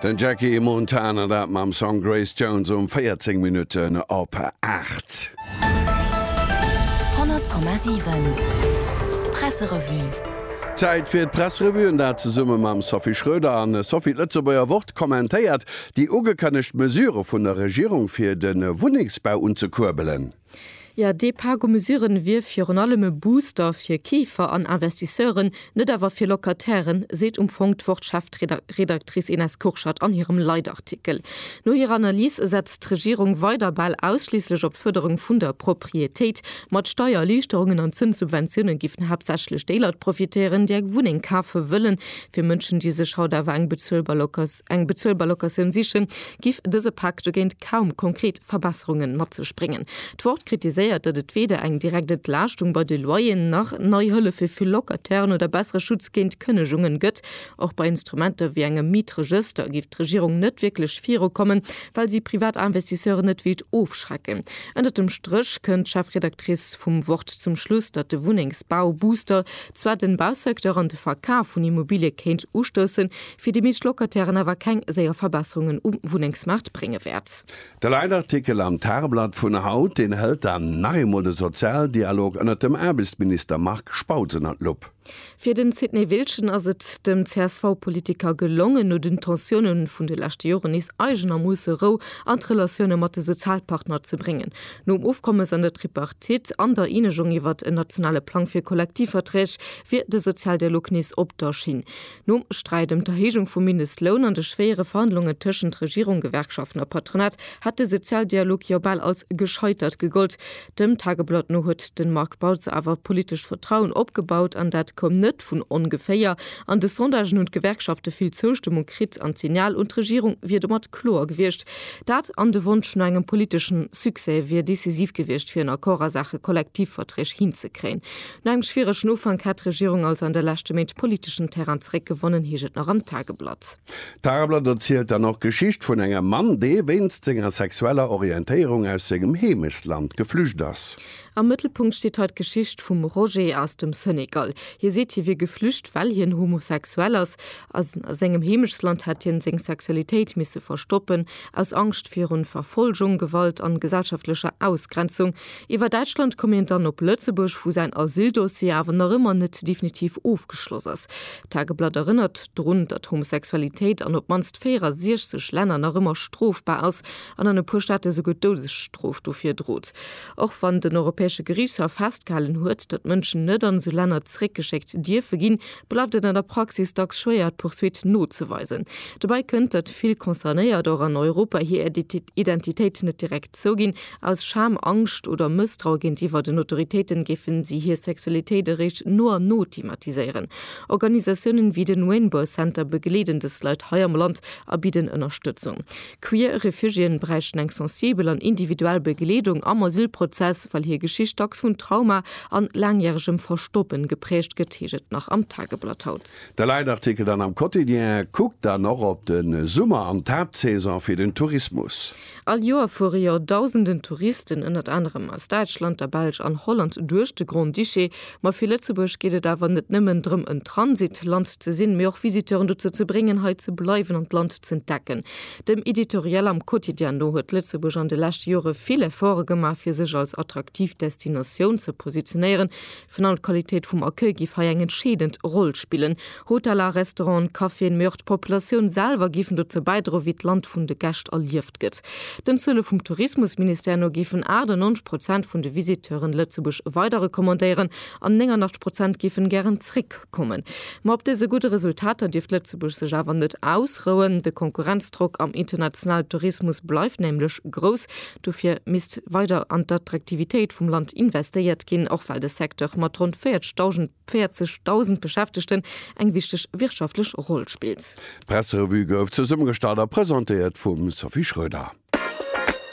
Den Jackie Montana dat mam Song Grace Jones um 14 Minutten op 8. 100,7 Presserevue. Zäit fir d'Pressrevue an dat zesumme mam Sophie Schröder an Sophie. D'Lëtzebuerger Wort kommentéiert déi ugekënnegt Mesure vun der Regierung fir de Wunnengsbau unzekuerbelen. Jo, dee Pak u Mesuren wier virun allem e Booster fir Keefer an Investisseuren, net awer fir Locatairen, seet um Fong d'Wort-Chefredaktrice Ines Kurschat an hirem Leitartikel. No hirer Analys setzt d'Regierung weider bal ausschliisslech op d'Fërderung vun der Proprietéit. Mat Steiererliichterungen an Zënssubventiounen géifen haaptsächlech déi Leit profitéieren, déi eng Wunneng kafe wëllen. Fir Mënschen, déi sech haut awer eng bezuelbar Locatioun sichen, giff dëse Pak dogéint kaum konkret Verbesserungen mat sech bréngen. D'Wort kritiséiert, datt et weder eng direkt Entlaaschtung bei de Loyeren nach nei Hëllef fir vill Locatairen oder bessere Schutz géint Kënnegungen gëtt. Och bei Instrumenter wéi engem Mietregëster giff d'Regierung net wierklech virukommen, well si privat Investisseuren net wéilt ofschrecken. Ënnert dem Stréch kënnt d'Chefredactrice vum Wort zum Schluss, datt de Wunnengsbau-Booster zwar den Bausecteur an de Verkaf vun Immobilie kéint ustoussen, fir déi meescht Locatairen awer keng séier Verbesserungen um Wunnengsmaart brénge wäert. De Leitartikel am Tageblatt vun haut, deen hëlt dann nach eemol de Sozialdialog ënnert dem Aarbechtsminister Marc Spautz ënner d'Lupp. Fir den Sidney Wiltgen ass et dem CSV-Politiker gelongen, no den Tensioune vun de leschte Joren nees eigenermoosse Rou an d'Relatioune mat de Sozialpartner ze bréngen. Nom Ofkommes an der Tripartite an der Eenegung iwwert en nationale Plang fir Kollektivverträg wier de Sozialdialog nees op der Schinn. Nom Sträit ëm d'Erhéijung vum Mindestloun an de schwéiere Verhandlungen tëschent Regierung, Gewerkschaften a Patronat hätt de Sozialdialog jo bal als gescheitert gegollt. Dem Tageblatt no huet de Marc Bautz awer politescht Vertrauen opgebaut an dat koum net vun ongeféier. An de Sondagen hunn d'Gewerkschafte vill Zoustëmmung kritt an d'Signal un d'Regierung wier domat kloer gewiescht. Dat an de Wonsch no engem politeschen Succès wier decisiv gewiescht fir en Accord a Saache Kollektivverträg hinzekréien. No engem schwieregen Ufank hätt d'Regierung also an de leschte Méint politeschen Terrain zeréckgewonnen, heescht et nach am Tageblatt. D'Tageblatt erzielt dann och d'Geschicht vun engem Mann, dee wéinst senger sexueller Orientéierung aus sengem Heemechtsland geflücht ass. Am Mëttelpunkt steet hei d'Geschicht vum Roger aus dem Senegal. Hie seet, hie wier geflücht, well hien homosexuell ass. A sengem Heemechtsland hätt hien seng Sexualitéit misse verstoppen, aus Angscht virun Verfolgung, Gewalt an gesellschaftlecher Ausgrenzung. Iwwer Däitschland koum een dann op Lëtzebuerg, wou säin Asyldossier awer nach ëmmer net definitiv ofgeschloss ass. D'Tageblatt erënnert drun, datt Homosexualitéit an op d'mannst 64 Länner nach ëmmer strofbar ass an an e puer Staate souguer d'Doudesstrof dofir drot. Och wann den Europäesche Geriichtshaff festgehalen huet, datt Mënschen net an esou Länner zeréckgeschéckt dierfe ginn, bleift et an der Praxis dacks schwéier, d'Pursuite nozeweisen. Dobäi kënnt, datt vill Concernéiert och an Europa hir Identitéit net direkt zouginn, Aus Scham, Angscht oder Mësstrau géintiwwer den Autoritéiten géifen si hir Sexualitéit eréischt no an no thematiséieren. Organisatiounen ewéi den Rainbow Center begleeden dës Leit hei am Land a bidden Ënnerstëtzung. Queer Refugiéen bräichten eng sensibel an individuell Begleedung am Asylprozess, well hir Geschicht dacks vun Trauma an laangjäregem Verstoppen geprägt gëtt, heescht et nach am Tageblatt haut. De Leitartikel dann am Quotidien kuckt dann och op de Summer an d'Haaptsaison fir den Tourismus. All Joer fuere jo dausenden Touristen, ënnert anerem aus Däitschland, der Belsch an Holland, duerch de Grand-Duché. Ma fir Lëtzebuerg geet et awer net nëmmen drëm en Transit-Land ze sinn, mee och Visiteuren dozou ze bréngen, hei ze bleiwen an d'Land z'entdecken. Dem Editorial am Quotidien no huet Lëtzebuerg an de leschte Jore vill Efforte gemaach, fir sech als attraktiv Destinatioun ze positionéieren. Vun an d'Qualitéit vum Accueil giff hei eng entscheedend Roll spillen. Hoteller, Restauranten, Caféen, mee och d'Populatioun selwer giffen dozou bäidroen, wéi d'Land vun de Gäscht erlieft gëtt. Den Zuele vum Tourismusministère no giffen 98 Prozent vun de Visiteuren Lëtzebuerg weider recommandéieren an 89 Prozent giffen gären zréck kommen. Ma op dëse gudde Resultater dierft Lëtzebuerg sech awer net ausrouen. De Konkurrenzdrock am internationale Tourismus bleift nämlech grouss. Dofir misst weider an d'Attraktivitéit vum Land investéiert ginn, och well de Secteur mat ronn 40.000 Beschäftegten eng wichteg wirtschaftlech Roll spillt. D'Presserevue gouf zesummegestallt a presentéiert vum Sophie Schröder.